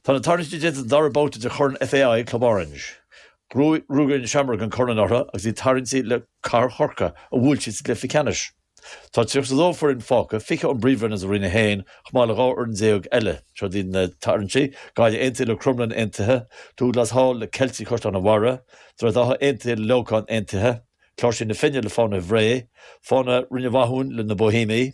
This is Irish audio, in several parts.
Tá na tarraingtí déanta don dara babhta de Chorn FAI Club Orange. Rug na Seamróga an corn anuraidh agus iad tarraingthe le Cathair Chorcaí, a bhuail siad sa gcluiche ceannais. Tá 32 foireann fágtha, 20 ón bpríomhroinn agus ó Roinn 1, chomh maith le dhá fhoireann déag eile. Seo iad na tarraingtí, Gaillimh Aontaithe le Crumlin Aontaithe, Douglas Hall le Ceiltigh Chaisleán an Bharraigh, Droichead Átha Aontaithe le Leamhcán Aontaithe, Cláirsigh na Finne le Fánaithe Bhré, Fánaithe Rinn Mhathúin le Na Bóihéamaigh,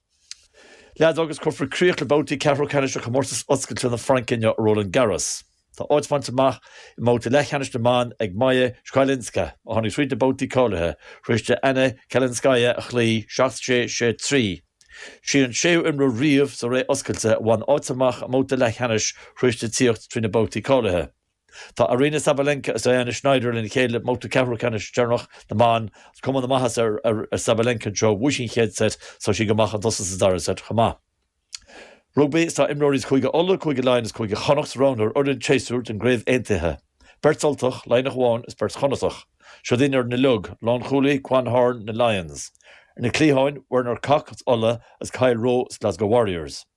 Leadóg agus cuirfear críoch le babhtaí ceathrú ceannais de Chomórtas Oscailte na Fraince inniu i Roland Garros. Tá áit bainte amach i mbabhta leathcheannais na mban ag Maja Chwalińska, a tháinig tríd na babhtaí cáilithe tar éis di Anna Kalinskaya a chloí, 7 6, 6 3. Sí an séú imreoir riamh sa Ré Oscailte a bhain áit amach i mbabhta leathcheannais tar éis di tíocht trí na babhtaí cáilithe. Tá Aryna Sabalenka agus Diana Shnaider lena chéile i mbabhta ceathrú ceannais deireanach na mban. Tá cuma na maitheasa ar Sabalenka anseo. Bhuaigh sí an chéad seit agus tá sí go maith chun tosaigh sa dara seit chomh maith. Rugbaí Is tá imreoirí as Cúige Uladh, Cúige Laighean agus Cúige Chonnacht roghnaithe ar fhoireann an tséasúir den gCraobh Aontaithe. Beirt Ultach, Laighneach amháin agus beirt Chonnachtach. Seod í an fhoireann uilig, lánchúlaí, Quan Horn, na Lions. Ar na cliatháin, Werner Kok, as Uladh, agus Kyle Rowe, as Glasgow Warriors.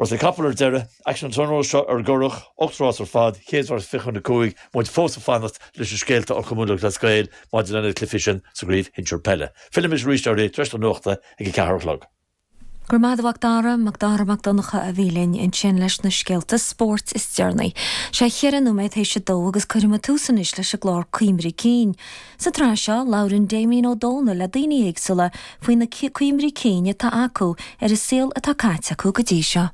Rásaí capall ar deireadh, aicsean an tráthnóna seo ar an gCurrach, ocht rás ar fad, chéad rás fiche chun a cúig, muid fós ag fanacht leis na scéalta ó Chumann Lúthchleas Gael maidir leis na cluichí sin sa gcraobh shinsir peile. Fillfidh mise arís oraibh tar éis na nuachta ag a ceathair a chlog. Go raibh maith agat a Mhacdara, MacDara Mac Donncha a bhí linn ansin leis na scéalta spóirt is deireanaí. Sé cheithre nóiméad théis a dó agus cuirfidh muid tús anois leis an gclár Cuimhní Cinn. Sa tsraith seo, labhrann Damien Ó Dónaill le daoine éagsúla faoi na cuimhní cinn atá acu ar an saol atá caite acu go dtí seo.